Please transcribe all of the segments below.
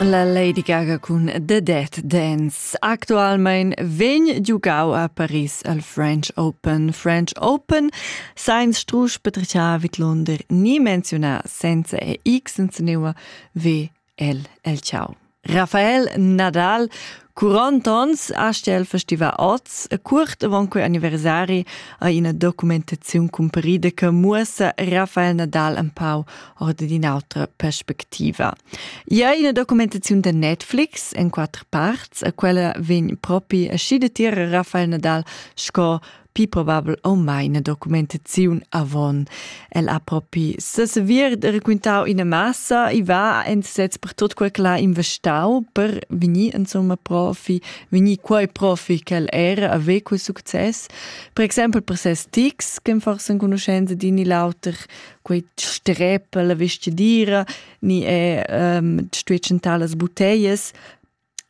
La Lady Gaga cun The Dead Dance actualmein vegn giugau a Paris al French Open. French Open sainz strusch betrichar vidlunder ni menziunar senza e x senza neua ve el el ciao. Rafael Nadal 40 ans haste el festivar oz e curt avant quei anniversari ha ina documentaziun cumparida che muossa Rafael Nadal empau ord d'in'autra perspectiva. Ja ina documentaziun da Netflix en quatter parts e quella vegn propi aschi da tier Rafael Nadal sco pi probabel o mai ina documentaziun avon. El ha propi sesavir de raquintau ina massa e va en sez per tot quel che l'ha investau per venir insomma profi, venir quei profi che era aveva quel succes. Per exempel per ses tics che forse enconoscenza di ni l'auter quei strepe la vestidira ni è um, stuecentà las botteglie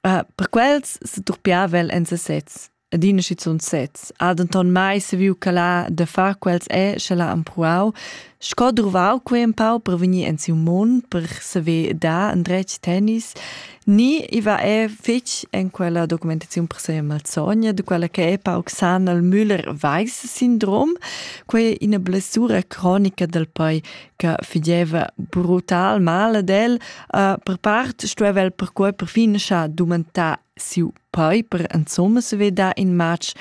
Uh, per quels se durpiava el en sesez adina schizunt sez. Ha denton mai saviu calar da far quels e sche l'ha empruau, sco druvau quei empau per vegnir en siu mund, per saver dar endretg tennis, ni i va è fetg en quella documentaziun per se malsogna, de quella che è pauc san al Müller-Weiss-Syndrom, quei ina blessura cronica del poi che figeva brutal male del, uh, per part stueva el per quei perfin scha dumantar siu Poi per insomma svetar in matg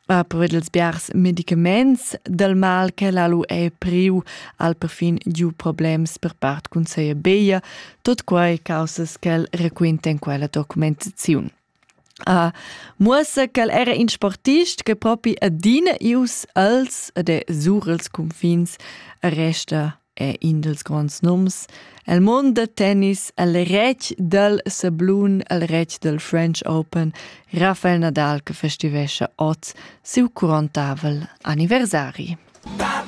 uh, per ils biars medicaments del mal che l'alu è priu al perfin giu problems per part cun seia beia, tot quai causas ch'el requinta in quella documentaziun. Uh, muossa ch'el era in sportist che propi adina ius als ed è sur els confins resta è in dals gronds nums el mund da tennis el retg dal sablun el retg dal French Open Rafael Nadal che festivescha ot siu curontavel anniversari. Baba!